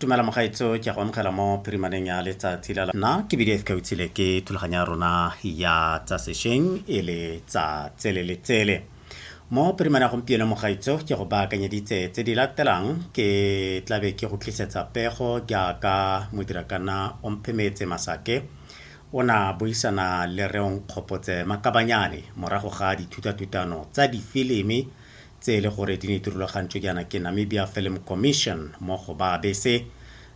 tumela mogaetso ke go amogela mo phirimaneng ya letsatsi la nna ke bile ka utsile ke thulaganyo ya rona ya tsa sešweng e le tsa tsele le tsele mo phirimane ya gompieno mogaetso ke go baakanyeditse tse di latelang ke tlabe ke go tlisetsa pego jaaka modirakana omphemetse masake o na buisana le reong kgopotse makabanyane morago ga dithutatutano tsa difilimi tse e le gore di ne di rulagantšwe jaana ke Namibia Film Commission mo go ba bese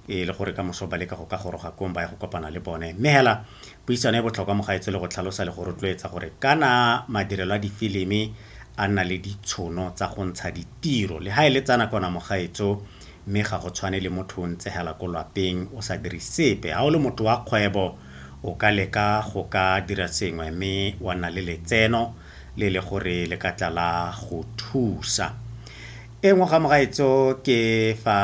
e le gore ka moso ba leka go ka goroga kong ba ya go kopana le bone mme hela puisano e botlhokwa mo gaetsho le go tlhalosa le go rotloetsa gore kana madirelo a difilimi a nna le ditshono tsa go ntsha ditiro le ga e le tsa nakona mo gaetso mme ga go tshwane le motho o ntse hela ko lwapeng o sa dire sepe ga o le motho wa kgwebo o ka leka go ka dira sengwe mme wa nna le letseno le le gore le ka tla la go thusa e nngwe ga mogaetso ke fa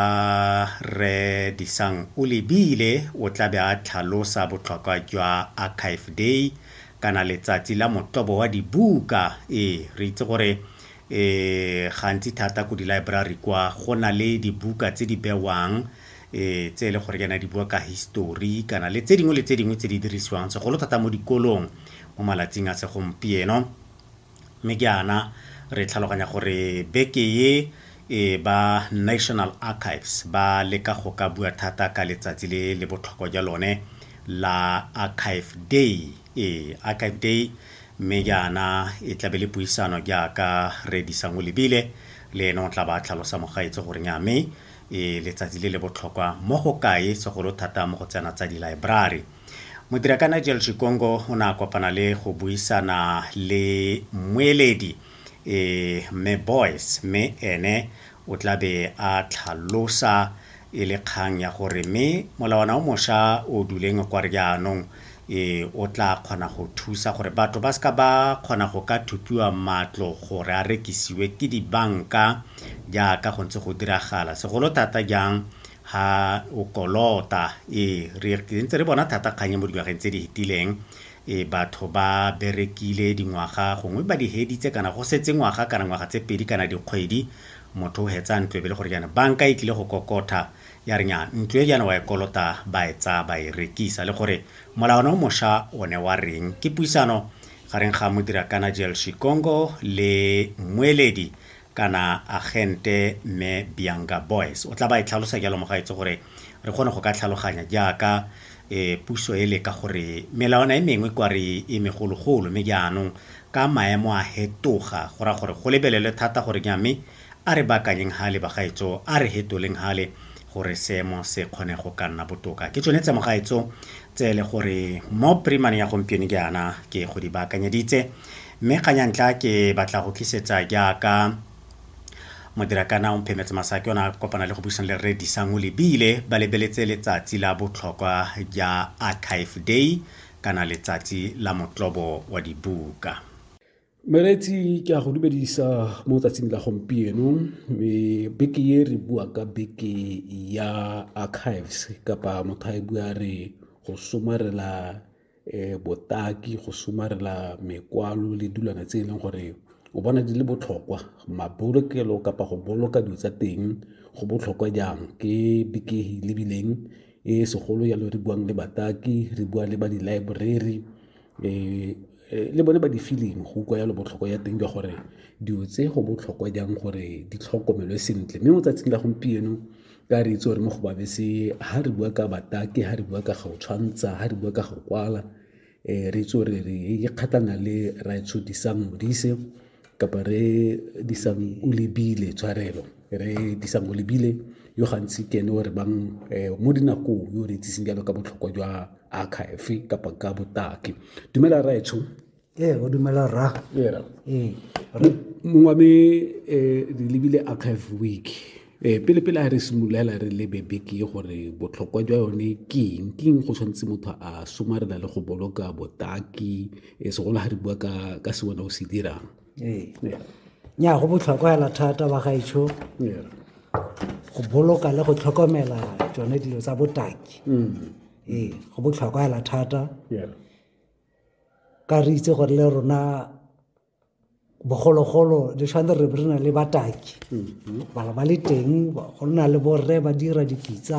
re disang o lebile o tla be a tlhalosa botlhokwa jwa archive day kana letsatsi la motobo wa dibuka ee re itse gore um gantsi thata ko di-library kwa go na le dibuka tse di bewang e tse e le gore ke na di bua ka history kana le tse dingwe le tse dingwe tse di dirisiwang segolo thata mo dikolong mo malatsing a segompieno mme ke ana re tlhaloganya gore beke ye e ba national archives ba leka go ka bua thata ka letsatsi le le botlhokwa jwa lone la archive day e archive day mme jaana e tlabe le puisano jaaka re disang o lebile le ene o tla ba tlhalosa mogaetse gore nya mme e letsatsi le le botlhokwa mo go kae segolo thata mo go tsena tsa dilaebrari. Modira ka Nigel Chikongo o ne a kopana le go buisana le mmueledi e Mme Boys mme ene o tla be a tlhalosa e le kgang ya gore mme molawana o mosha o duleng kwa re jaanong Ee, o tla kgona go thusa gore batho ba seka ba kgona go ka thupiwa matlo gore a rekisiwe ke dibanka jaaka go ntse go diragala segolo thata jang ha o kolota. Ee, re ntse re bona thata kgang e mo dingwageng tse di fetileng e batho ba berekile dingwaga gongwe ba di heditse kana go setse ngwaga kana ngwaga tse pedi kana dikgwedi motho o hetsa ntlo e be le gore jaana banka e tlile go kokotha ya re nnyaa, ntlo e jaana wa e kolota, ba e tsaya ba e rekisa, le gore molawana o mosha o ne wa reng. Ke puisano gareng ga Modirakana Jel Shikongo le mmueledi kana agente Mme Bianga Boyce. O tla ba e tlhalosa jalo mogaetso gore re kgone go ka tlhaloganya jaaka e puso e leka gore melawana e mengwe kwa re e megologolo mme jaanong ka maemo a hetoga go ra gore go lebelelwe thata gore nya mme A re baakanyeng hale bagaetsho, a re hetoleng hale gore seemo se kgone go ka nna botoka. Ke tsone tse mogaetsho tse ele gore mo primane ya gompieno jaana ke go di baakanyeditse. Mme kgang ya ntlha ke batla go tlisetsa jaaka modirakana o mphemetse masake ona a kopana le go buisana le rre Disang o lebile ba lebeletse letsatsi la botlhokwa ja Archive Day kana letsatsi la motlobo wa dibuka. Meretsi ke a go dumedisa mo tsatsing la gompieno me beke e re bua ka beke ya archives kapa motho a e bua re go somarela um botaki go somarela mekwalo le dilwana tse e leng gore o bona di le botlhokwa mabolokelo kapa go boloka dilo tsa teng go botlhokwa jang ke beke e lebileng e segolo jalo re buang le bataki re bua le ba di-library Eh, eh, le bone ba di feeling go utlwa yalo botlhoko ya teng jwa gore dilo tse go botlhokwa jang gore di tlhokomelwe sentle mme mo tsatsing la gompieno ka re itse gore mo go babese ha re bua ka batake ha re bua ka go tshwantsha ha re bua ka go kwala um re itse gore re ikgatlana le raetsho disang modise kapa re disang o lebile tshwarelo re disang o lebile yo gantsi ke ene o re bang eh, mo dinakong yo re itsiseng jalo ka botlhokwa jwa archive kapa ka botaki dumela raetsho ee o dumela ra ee, ee mongwe me eh, re lebile archive week ee pele pele a re simolola re lebe beke gore botlhokwa jwa yone ke eng ke eng go tshwanetse motho a somarela le go boloka botaki e segolo ga re bua ka ka se wena o se dirang ee nya go botlhokwa hela thata ba gaetsho go boloka le go tlhokomela tsone dilo tsa botaki mm. ee go botlhokwa hela thata ka re itse gore le rona bogologolo le tshwane re re na le bataki bala ba le teng go nna le borre ba dira dipitsa